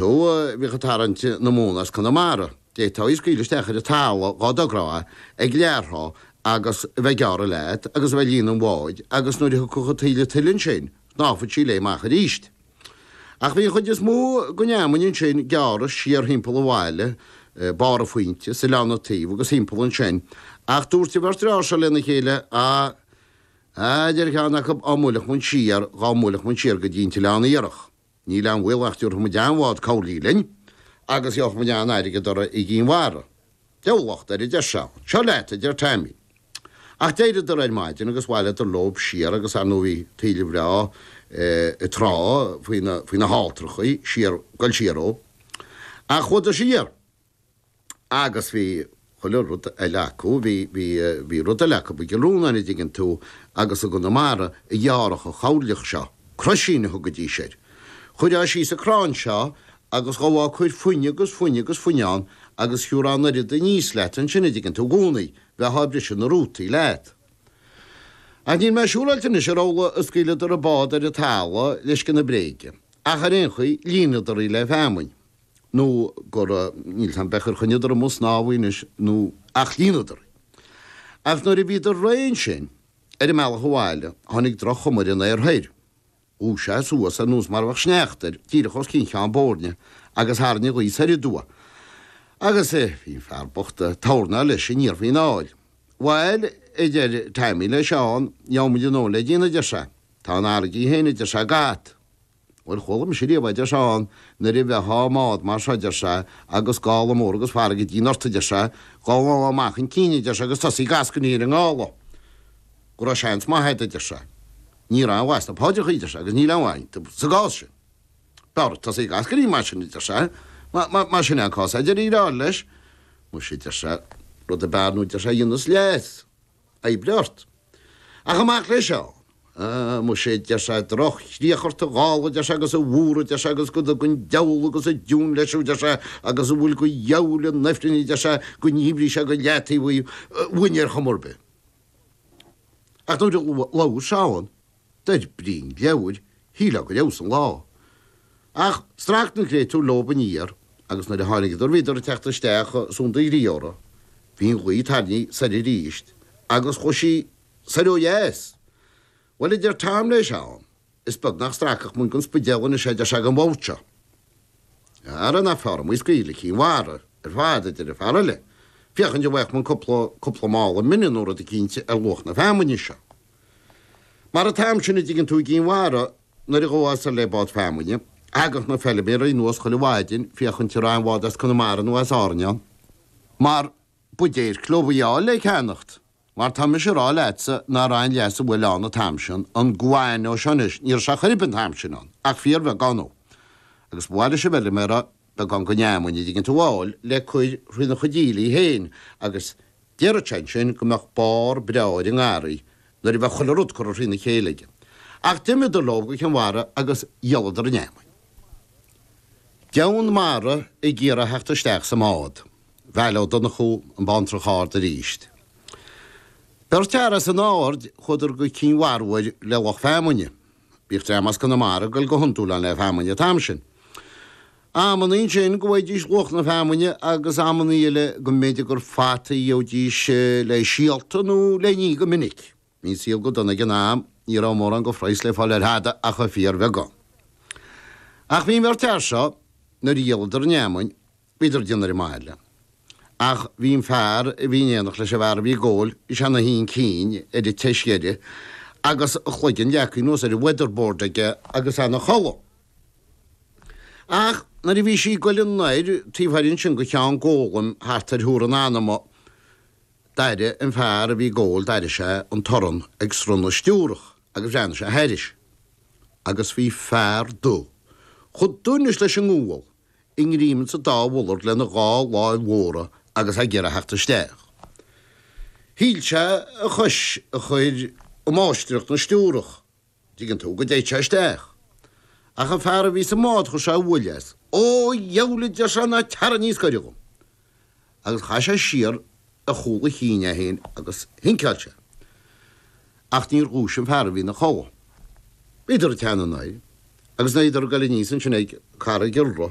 Nó bhíodh ag tarraingt na móna as Conamara. D'fhéadfá scaoileadh isteach ar an talamh dhá dtogrófá ag lag trá agus a bheith ag gearradh leat agus a bheith ag líonadh an bháid agus nuair a thiocfadh an taoille tuile ansin, shnámhfadh sí léi amach aríst. Ach bhí an chuid is mó gon fheamainn ansin gearrtha siar thimpeall an bhaile, barr an Phointe, is Oileán na Tuí agus thimpeall ansin. Ach dúirt an bheirt fhear seo lena chéile, Á, a deir ceann acu, á mbuailfeadh muinn siar, dhá mbuailfeadh muinn siar go dtí an tOileán Iarthach, Níl aon bhaol nach dtabharfaimid an-bhád coirlí linn agus gheobhaimid an-airgead orthu i gCinn Mhara. Deabhal locht air, a deir Seán. Seo leat, a deir Taimín. Ach d'éiríodar ar maidin agus bhaileadar leob siar agus ar ndóigh bhí taoille bhreá ag trá faoi na halltrachaí siar, goil siar ó. Ach chuadar siar. agus bhí chuile rud eile acu, bhí, bhí, bhí rud eile acu, i gCill Rónáin a' dtuigeann tú agus i gConamara, a ghearradh an choirleach seo, croisín a thugaidís air. Chuirfeá síos an crann seo agus ghabhfá ag cur fuinneamh agus fuinneamh agus fuinneamh ann agus thiúrfá an oiread aníos leat ansin a' dtuigeann tú, i gcónaí, bheifeá a' briseadh na rútaí leat. Ach níl mé siúráilte anois ar amhla a scaoileadar an bád ar an talamh le scian na bréige, ach ar aon chaoi, líonadar í le feamainn. nó gur, níl a fhios a'm beirthe ar choinníodar amu' sa snámh í anois nó ach líonadar í. Ach nuair a bhíodar réidh ansin, ar a mbealach abhaile, tháinig droch-chuma ar an aer thoir. Dhubhaigh sé suas ar nós mar a bheadh sneachta air, díreach os cionn Cheann Boirne, agus tharraing an ghaoth soir aduaidh. Agus, eh, bhí an fear bocht a' tornáil leis aniar faoin aill. Bhail, a deir Taimín le Seán, gheobhamuid anó le déanamh, a deir sé. Tá an fharraige féin, a deir sé, go ait. Bhuel, chuala mise riamh, adeir Seán, nuair a bheitheá i mbád mar seo, deir sé, agus gála mór agus farraige ag déanamh ort, adeir sé, dhá ngabhfá amach chun cinn, adeir sé, agus tosaí ag eascainí ar an ngála, go raibh seans maith agat, adeir sé. Ní raibh maith sna paidreachaí, adeir sé, agus níl aon mhaith iontu sa gcás sin. B'fhearr tosaí ag eascainí mar sin, adeir sé, más in é an cás, adeir an fear eile leis. Muise, adeir sé, rud ar bith ar ndóigh, adeir sé, a dhéanfas leigheas. oibrigh ort. Ach amach le Seán. Á, muise, a deir sé, droch-chríoch ort, a ghála, a deir sé, agus a mhuir, a deir sé, agus go dtuga an diabhal agus an deamhan leis thú, deir sé, agus a bhfuil go dheabhail in ifrinn, a deir sé, go ndíbrí sé go leataobh í uainn ar chuma ar bith. Ach nuair a labhair Seán. Dar brí an leabhair, shílfeá gur fheabhsaigh an lá. Ach strac na créatúir leob aniar agus nuair a tháinigeadar bhíodar ag teacht isteach Sunda Ghríóra. Bhí an ghaoth tarraingthe soir arís agus chuaigh sí soir ó dheas. Bhuel, a deir Tom le Seán, is beag nach stracfadh muinn gon Spidéal anois é a deir sé gon bhord seo. Ara nach fearr a bheith ag scaoileadh Chinn Mhara ar fad a deir an fear eile. Féachaint an bhfaigheadh muinn cúpla, cúpla mála mine nó rud eicínt ar luach na feamainne seo. Mar an t-am sin, an dtuigeann tú, i gCinn Mhara nuair a ghabhfá soir le bád feamainne, thagadh na feiliméaraí anuas chuile mhaidin féachaint an raibh aon bhád as Conamara nó as Árainn ann. Mar ba déirc leo í a fháil le ceannacht. Mar tá mise ag rá leatsa ná raibh aon leasú, bhuel, ann an t-am sin, an guano seo anois, ní raibh sé chor ar bith an t-am sin ann, ach fíorbheagán dhó. Agus ba mhaith leis an bhfeiliméara beagán gon fheamainn, an dtuigeann tú, a fháil le cur thrína chuid aoiligh féin agus déarfadh sé ansin go mbeadh barr breá ar an ngarraí nuair a bheadh chuile rud curtha thrína chéile aige. Ach d'imiodar leo go Cinn Mhara agus dhíoladar an fheamainn. Deamhan mara ag iarraidh theacht isteach sa mbád. Veail Ó Donnchú an Bhantrach Ard arís. Beirt fhear as an Aird chuadar go Cinn Mhara uair le lucht feamainne. Bhíodh dream as Conamara ag dul go hiondúil ann le feamainn an t-am sin. Amannaí ansin go bhfaighidís luach na feamainne agus amannaí eile go mb'fhéidir gur fataí a gheobhaidís le síolta nó le n-ithe go minic. Bhí an saol go dona ag an am, ní raibh mórán go phraghas le fáil ar thada ach an fíorbheagán. Ach bhí an bheirt fhear seo, nuair a dhíoladar an fheamainn, Bhíodar ag déanamh ar an mbaile. Ach bhí an fear a bhí in éineacht leis an bhfear a bhí ag ól is ea na haon chinn ar an tseas deiridh agus a chloigeann leagtha anuas ar an weatherboard aige agus é ina chodladh. Ach nuair a bhí sí ag goil anoir taobh thoir ansin go Ceann Gólaim thart ar thuar an anama d'airigh an fear a bhí ag ól d'airigh sé an torann ag srón na stiúrach agus bhreathnaigh sé thairis agus bhí fear dubh chomh dubh anois leis an ngual i ngreim sa dá mhullard lena dhá láimh mhóra agus ag iarraidh theacht isteach. Shíl sé a chois a chur i máistreacht na stiúrach, an dtuigeann tú, go dtéadh sé isteach. Ach an fear a bhí sa mbád chuir sé uaill as. Ó, a dheabhail, a deir sé, ná teara níos gaire dhom. agus chaith sé siar ar chúl a chinn é féin agus shinceáil sé. Ach níor dhúisigh an fear a bhí ina chodhladh. Bhíodar ag teannadh anoir agus bhíodar ag goil aníos ansin ag Carraig Iolra